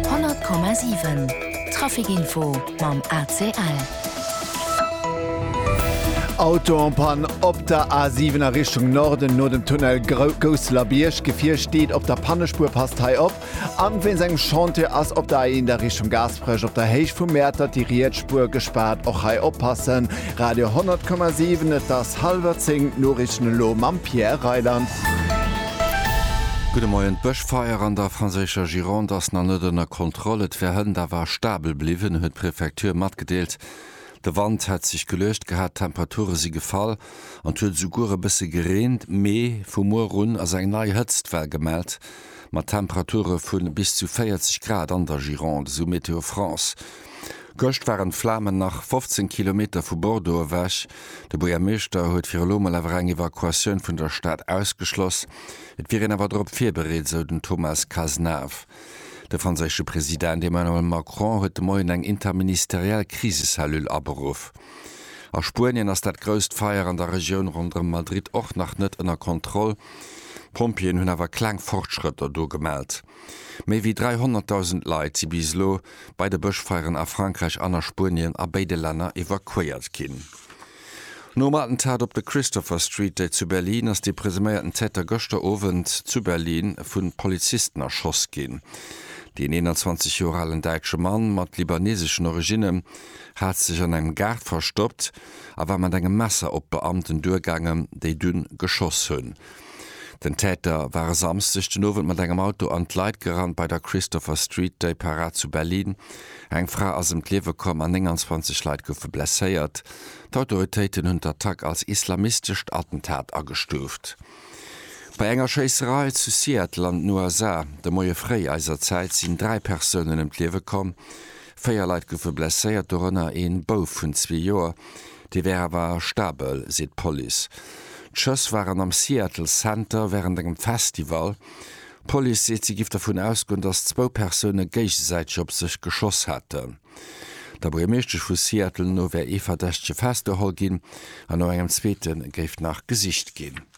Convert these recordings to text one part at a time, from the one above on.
100,7 Trafic Info mam ACL. Auto en Panne op der A7 a Richtung Norden no dem Tunnel Gousselerbiërg. Gefier steet op der Pannespuer, passt hei op. An wéinst engem Chantier ass op der A1 a Richtung Gaasperech op der Héicht vum Mäertert déi riets Spuer gespaart. Och hei oppassen. Radio 100,7 Et ass hallwer 10, d'Noriichten elo mam Pierre Reyland. Gudde Moien. D'Feier an der franséischer Gironde ass nach net ënner Kontroll, et wär hënt awer stabel bliwwen, huet d'Prefecture matgedeelt. De Wand hätt sech geluecht gehat, d'Temperature si gefall an et huet esouguer e bësse gereent. Mee vu muer un ass eng nei Hëtztwell gemellt, mat Temperature vu bis zu 40 Grad an der Gironde, esou Météo France. Gëscht waren d'Flamen nach 15 Kilometer vu Bordeaux ewech. De Buergermeeschter huet fir elo mol awer eng Evakuatioun vun der Stad ausgeschloss. Et wier een awer drop virbereet, esou den Thomas Cazenave. De franséische President Emmanuel Macron huet de Moien eng interministeriell Krisecellule aberuff. A Spuenien ass dat grousst Feier an der Regioun ronderëm Madrid och nach net ënner Kontroll. D'Pompjeeën hunn awer kleng Fortschrëtter do gemellt. Méi wéi 300.000 Leit si bis elo bei de Bëschfeieren a Frankräich an a Spuenien a béide Länner evakuéiert ginn. Nom Attentat op der Christopher Street déi zu Berlin ass de presuméierten Täter gëschter Owend zu Berlin vu Polizisten erschoss ginn. Deen 21 Joer alen däitsche Mann mat libaneseschen Originnen hat sech an engem Gaart verstoppt a war mat engem Messer op d'Beamten duergaangen, déi dunn geschoss hunn. Den Täter war e Samsdeg den Owend mat engem Auto an d'Leit gerannt bei der Christopher Street Day Parade zu Berlin. Eng Fra ass ëm d'Liewe komm an 29 Leit goufe blesséiert. D'Autoritéiten hunn d'Attack als islamistescht Attentat agestuuft. Bei enger Schéisserei zu Seattle an den USA de Moie fréi eiser Zäit sinn dräi Persounen ëm d'Liewe komm. Véier Leit goufe blesséiert, dorënner ee Bouf vun zwee Joer. Dee wär awer stabel, seet d'Police. D'Schëss waren am Seattle Center wärend engem Festival. D'Police seet, si giff dervun ausgoen, datt zwou Persoune géigesäiteg op sech geschoss haten. Der Buergermeeschtesch vu Seattle no wär ee Verdächtege festgeholl ginn an no engem zweete géif nach gesicht ginn.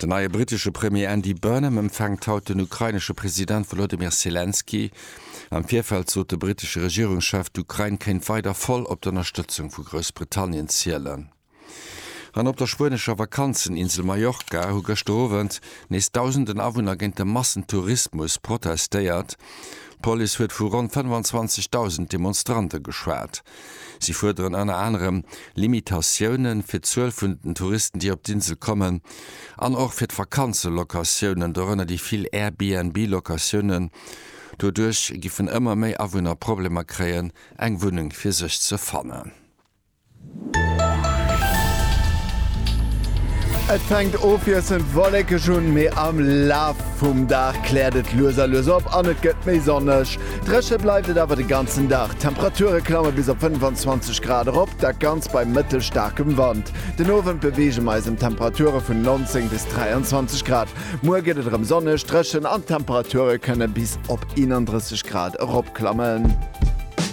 Den neie brittesche Premier Andy Burnham empfänkt haut den ukrainesche President Wolodymyr Selenskyj. Am Virfeld sot de brittesche Regierungschef, d'Ukrain kéint weider voll op d'Ënnerstëtzung vu Groussbritannien zielen. An op der spuenescher Vakanzeninsel Mallorca hu gëschter Owend nees dausenden Awunner géint de Massentourismus protestéiert. D'Police huet vu ronn 25.000 Demonstrante geschwat. Si fuerderen ënner anerem Limitatioune fir d'Zuel vun den Touristen, déi op d'Insel kommen, an och fir d'Vakanzelocatiounen, dorënner déi vill Airbnb-Locatiounen. Doduerch giffen ëmmer méi Awunner Problemer kréien, eng Wunneng fir sech ze fannen. Et fänkt ofwiesselnd wollekeg un, mee am Laf vum Dag kläert et lues a lues op an et gëtt méi sonneg. Dréche bleift et awer de ganzen Dag. D'Temperature klamme bis op 25 Grad erop, dat Ganzt bei mëttelstaarkem Wand. Den Owend beweege mer eis ëm Temperature vun 19 bis 23 Grad. Muer gëtt et erëm sonneg, dréchen an d'Temperature kënne bis op 31 Grad eropklammen.